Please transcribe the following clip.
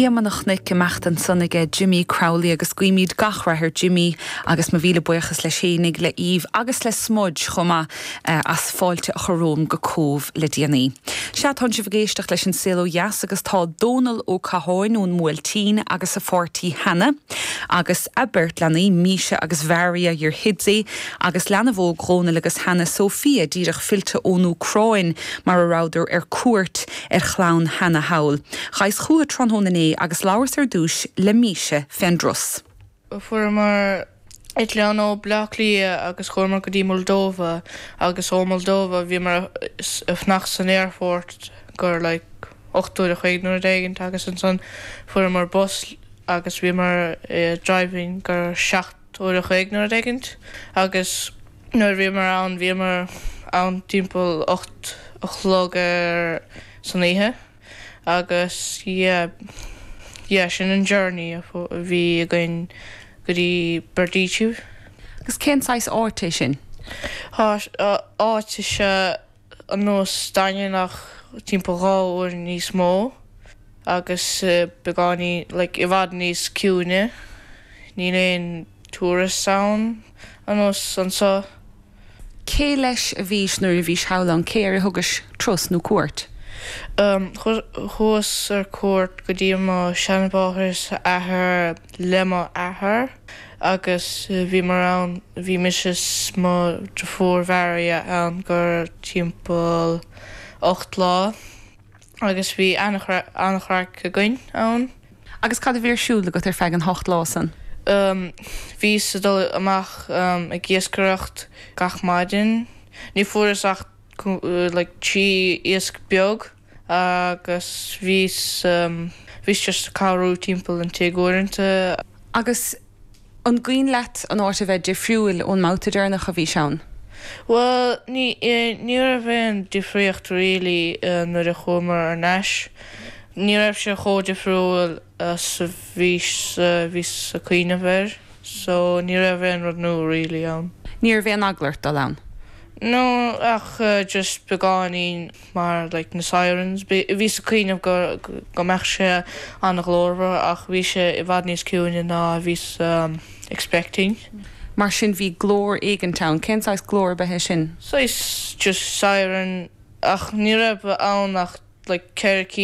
Éamonn a' Chnoic, imeacht ansan aige Jimmy Crowley agus guímíd gach rath ar Jimmy agus mo mhíle buíochas leis fhéinig, le Eve agus le Smudge chomh maith as fáilte a chur romham go Cóbh le déanaí. Sea, tánn sibh ag éisteacht leis an Saol Ó Dheas agus tá Dónal Ó Catháin ón mBuailtín agus a pháirtí Hannah agus a beirt leanaí, Misha agus Maria, Yurhidsi, agus leanbh óg Dhónail agus Hannah, Sophia, díreach fillte ón Úcráin mar a rabhadar ar cuairt. ar chlann Hannah thall. Ghaibheas chútha tráthnóna inné agus labhras ar dtúis le Misha fén dturas. Fuaireamar eitleán ó Bleá Cliath agus chuamar go dtí Moldova agus ó Moldova bhíomar ag fanacht san aerfort i gcomhair like ocht uair an chloig nó rud éigint agus ansan fuaireamar bus agus bhíomar ag driving i gcomhair seacht uair a chloig nó rud éigint agus nuair a bhíomar ann bhíomar ann timpeall ocht a chlog san oíche agus yeah yeah sin an journey a bhí againn go dtí Berdichev. Agus cén saghas áit é sin? Áit is ea ar nós Daingean ach timpeall dhá uair níos mó agus beagáinín, like, i bhfad níos ciúine. Níl aon tourists ann ar nós anso. Cé leis a bhís nuair a bhís thall ann? Cé air a thugais turas nó cuairt? Em, chuas ar cuairt go dtí mo sheanmháthair is a athair le mo athair. Agus bhíomar ann, bhí mise 's mo dheirfiúr Maria ann i gcomhair timpeall ocht lá agus bhí an-chraic againn ann. Agus cad a bhí ar siúl agat ar feadh an ocht lá san? Bhíos ag dul amach ag iascaireacht gach maidin. Ní fuaireas ach like trí iasc beag. Agus bhíos, bhíos just ag cabhrú timpeall an tigh uaireanta. Agus an gcuimhin leat an áit a bheith difriúil ón mbabhta deireanach a bhís ann? Bhuel, ní, ní raibh aon difríocht really nuair a chuamar thar n-ais. Ní raibh sé chomh difriúil 's a bhís, bhíos a' cuimhneamh air. So ní raibh aon rud nua really ann. Ní raibh aon eagla ort dul ann? No, ach just beagáinín. mar like na sirens. Bhíos ag cuimhneamh go go mbeadh sé an-ghlórmhar ach bhí sé i bhfad níos ciúine ná a bhíos expecting. Mar sin bhí glór éigint ann. Cén saghas glór a b'ea é sin? Saghas just siren ach ní raibh ann ach like ceithre.